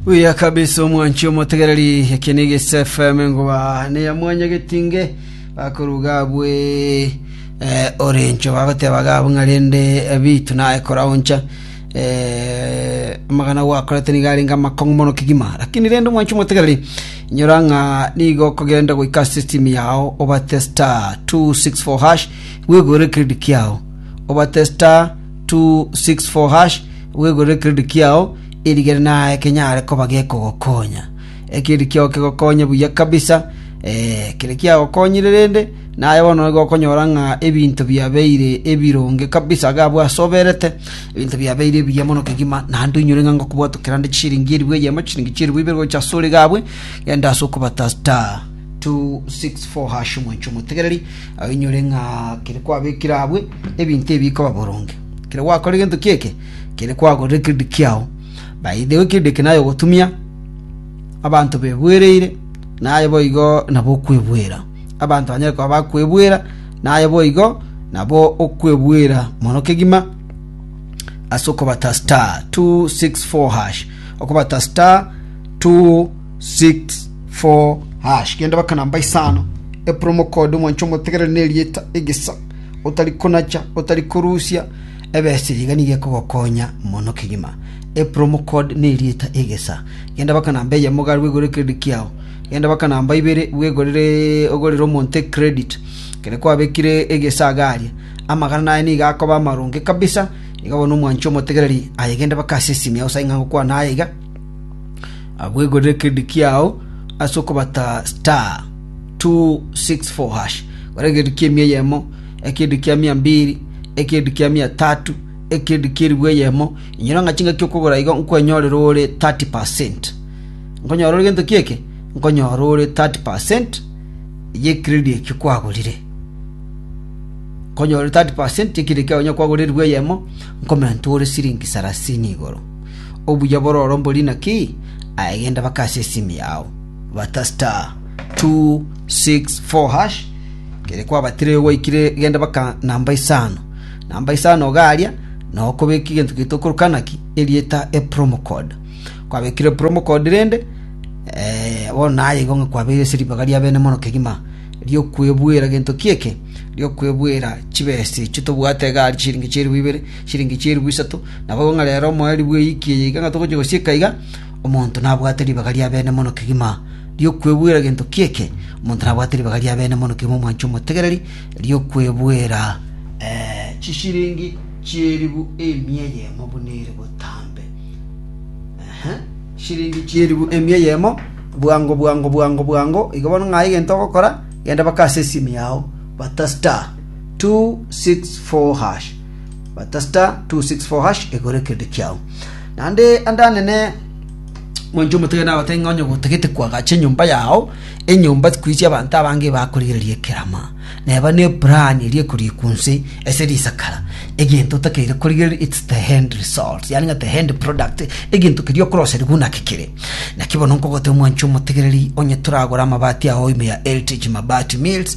Buya kabisa omwanchi omotegereri eke ni Gisa FM ngoba ne ya mwanya getinge bakoruga abwe eh, orencho bagoteba gabu ng'arende eh, bitu naye koraoncha eh, amagana gwakorete niga arenge amakong'u mono kigima lakini rende omwanchi omotegereri nyora ng'a nigo okogenda goika system yao obate star 264 hash bwegore credit kiao obate star 264#, bwegorere ekerendi kiao, erigere naye kenyare koba gekogokonya. Ekerendi kiao kegokonye buya kabisa, eh, kere kiagokonyire rende, naye bono nigo okonyora ng'a ebinto biabeire ebironge kabisa iga abwo ase oberete, ebinto biabeire ebiya mono kegima, naende oinyore ng'a ngokobwatokera nde chisiringi elfu eyemo, chisiringi chielfu ibere gocha ase ore iga abwo, genda ase okobata star. 264 hash omonche omotegereri ainyore ng'a kere kwabekire abwe ebinto ebi bikoba boronge kere gwakora egento kieke kere kwagorire kiridi kiao by the way kiridi eke naye ogotumia abanto bebwereire naye boigo nabo okwebwera abanto banyare koba bakwebwera naye boigo nabo okwebwera mono kegima ase okobata star 264 hash okobata star 2 64 hash genda baka namba isano epromo code omwancho omotegereri ne erieta egesa otari konacha otari korusia ebesiri iga nigo ekogokonya mono kegima epromo code ne erieta egesa genda baka namba eyemo iga aria igure credit kiao genda baka namba ibere bwegorere ogorere omonto ecredit kere kwabekire egesa iga aria amagana naye nigo akoba amaronge kabisa iga bono omwancho omotegereri aye genda baka ase esimi yao saing'a gokwana aye iga Abwegorere ekerendi kiao ase okobata star 264 hash, gora ekerendi kia emia eyemo, ekerendi kia mia mbiri, ekerendi kia mia tatu, ekerendi kia eribu eyemo, inyora ng'a chingaki okogora igo nkwenyorere ore 30 percent. Nkonyora ore gento ki'eke, nkonyora ore 30 percent y'ekerendi ekio kwagorire. Nkonyora ore 30 percent y'ekerendi kiao onye kwagora eribu eyemo, nkomentwe ore siringi sarasini igoro. Obuya bororo mbori naki? Aye genda bakase esimi yao, bata star, two, six, four hash, ekero kwabatire erio gwaikire genda baka namba isano. Namba isano iga aria, nao okobeka egento gete okoroka naki? Erieta epromo code. Kwabekire epromo code rende, bono naye igo ng'a kwabeire ase ribaga ria bene mono kegima, ri'okwebuera gento ki'eke, ri'okwebuera chibesa echio tobwate iga aria chichiringi chi'eribu ibere, chiringi chi'eribu isato. Nabo ng'a rero omoerio bw'eiki eye iga ng'a togochia gosieka iga, omonto nabwate ribaga ri'abeene mono kegima ri'okwebwera gento ki'eke, omonto nabwate ribaga ri'abeene mono kegima omwancha omotegereri ri'okwebwera chisiringi chi'eribu emia eyemo buna ere botambe. Ehe, siringi chi'eribu emia eyemo, bwango bwango bwango bwango. Igo bono ng'aye egento ogokora, genda baka ase esimi yao, bata star 264 hash. Bata star 264 hash egore kende kiao. Naende ande anene mwancho omotege nagotebia ng'a onye gotagete kwagacha enyomba yao enyomba kwisia abanto abange bakorigereria ekerama neba ne plan eria ekorikwa nse ase risakara egento otakeire korigereria its the hand result yani ng'a the hand product egento keria okoroseriwa naki kere naki bono nkogotebia mwancho omotegereri onye toragora amabati ao ime ya heritage mabati mills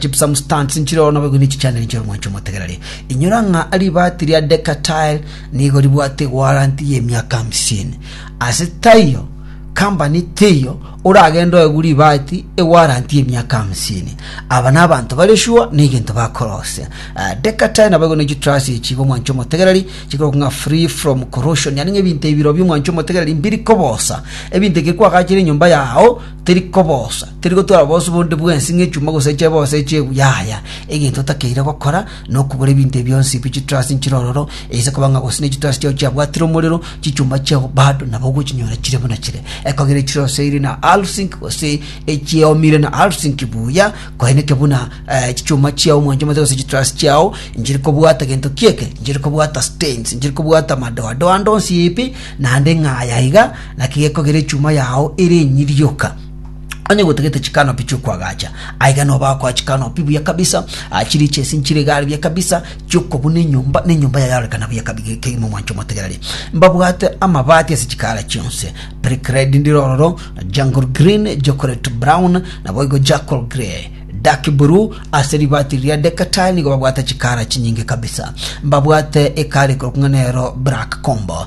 chipsamstants nchireo nabagwe ne chichandani chia oromwancha omotegereri. Inyora ng'a ribaati ria Decatile nigo ribwate warranty ye emiaka hamsini. Ase taiyo kambani teiyo oragenda oegwe ribaati ewarranty emiaka hamsini. Aba na abanto bare sure na egento bakorosia. Ah, Decatile nabagwe ne chitruss echi bomwancha omotegereri chikoroka ng'a free from corrosion, yaani ng'a ebinto ebiro biomwancha omotegereri mbiri kobosa. Ebinto ekero kwagachire enyomba yao teri kobosa, teri gotwara obosu bonde bwensi ng'echuma gose echebo gose echegu, yaya, egento otakeire gokora nokobora ebinto ebi bionsi bi chiturasi nchire ororo, eise koba ng'a gose ne chiturasi chiao chiabwatire omorero, chichuma chiao bado nabo ogochinyora chire buna chire. Ekogera echiroseiri na alsink gose echiomire na alsink buya, koeneke buna eh, chichuma chiao omwanche omote gose chiturasi chiao nchiri kobwata gento kieke, nchiri kobwata stains, nchiri kobwata madoadoa ande onsi ipi naende ng'aya iga, Naki gekogera echuma yao ere enyirioka, onye gotagete chikanopi chi'okwagacha, aiga nobakoa chikanopi buya kabisa, ah, chirichesi nchire igare buya kabisa, chi'okobuna enyomba, na enyomba yaye yarorekana buya kabi ge- kegima omwancho omotegereri. Mbabwate amabati ase chikaara chionsi, Brickred ndire ororo, Jungle Green, Chocolate Brown, naboigo Charcoal Grey, Dark Blue, ase ribati riria Decatile nigo babwate chikaara chinyinge kabisa. Mbabwate ekaara ekorokwa ng'a nero Black Combo,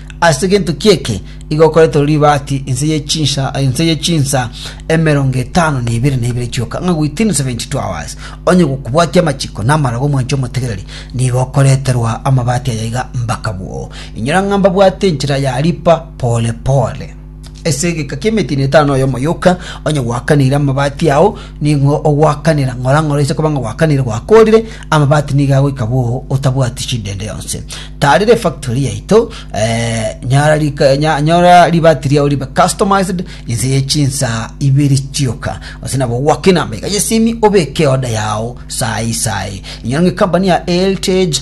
Ase gento ki'eke iga okoretwe ribaati inse ye chinsa inse ye chinsa emerongo etano na ibere na ibere chioka, ng'a within 72 hours onye gokobwatia amachiko na amarogo omwancha omotegereri, nigo okoreterwa amabaati aya iga mbakabwo. Inyora ng'a mbabwate enchera ya ripa pore pore. Ase egeka ki'emetino etano y'omoyuka, onye gwakanire amabati ao, ning'o ogwakanera? Ng'ora ng'ora ise koba ng'a gwakanire gwakorire, amabati nigo agoika bwoo otabwati chindende yonsi. Taarera efactory yaito, eh, nyara rika, nya, nyora ribati riao ribe customized inse ye chinsaa ibere chioka. Gose nabo gwake namba iga y'esimi obeke order yao saa hii saa hii. Inyora ng'a ecompany ya Eltage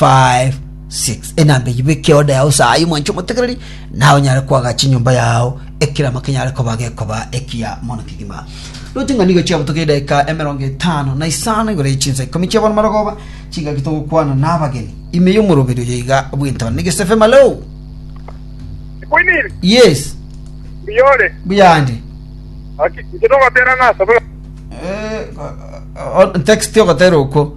5:6 Enamba eyio beka eoda yao ase aye omwanche omotegereri, naye onyare koagacha enyomba yao, ekerama kenyare koba gekoba ekiya mono kegima. Roche ng'a nigo chiabutoka edaika emerongo etano na isano igoro ye chinsa ikomi chi'abono marogoba, chingaki togokwana nabageni. Ime y'omoroberi oyo iga bw'entaba nige Sefe Malou. Kwiniri, Yes, mbiyore. buyande. Aki, nche nogotera ng'a asabula. Eh, o- o- text ogotera okwo.